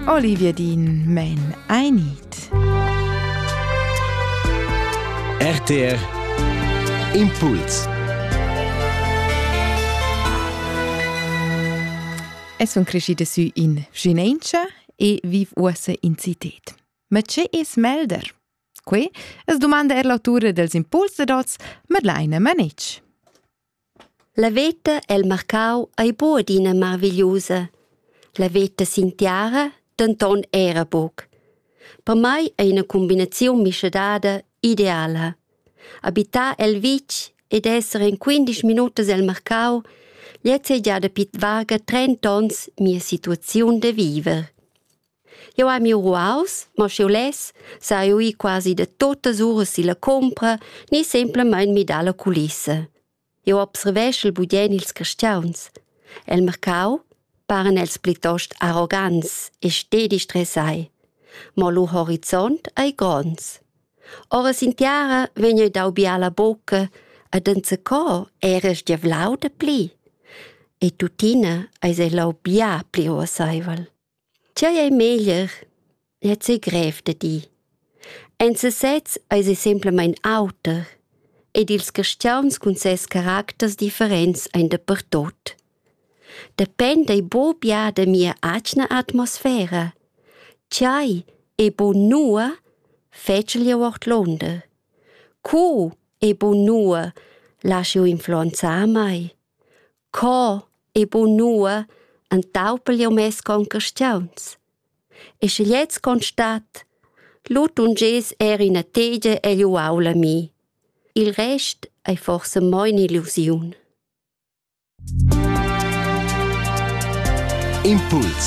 Olivia Dean Men I Need. RTR Impuls Es sun crescida sü in Vinencia e viv uossa in cited. Ma che es melder? Que es domanda er l'autura dels impuls da dots Madeleine Manich. La veta el marcau ei buca adina marvigliusa. La veta sin tiara denton era buc. Per mei ei ina cumbinaziun mischadada ideala. Habitar el vitg ed esser en quindisch minutas el marcau gliez ei gia dapi varga trenta onns mia situaziun da viver. Jeu hai miu ruaus, mo sch'jeu less, sa jeu ir quasi da totas uras silla compra ni semplamein midar la culissa. Jeu observeschel budien ils cristiauns. El mercau paran els plitost arrogants e stedi stressai, mo lu horizont ei gronds. Ora sin tiara vegn jeu dau bia la bucca ed enzacò era sgiavlau da pli. E tuttina eis ei lau bia pli uasseivel. Tgei ei meglier? Gliez ei grev da dir. En sesez eis ei semplamein auter ed ils caschiauns cun ses caracters differents ein dapertut. Dependa ei buca bia da mia atgna atmosfera. Tgei ei buca nua, fetschel jeu ordlunder. Co ei buca nua, lasch jeu influenzar mei? Co e bunua entaupel jeu mes concastiuns. E sche gliez constat, lu tungess er ina tegia egl uaul a mi. Il rest ei forsa mo in'illusiun. Impuls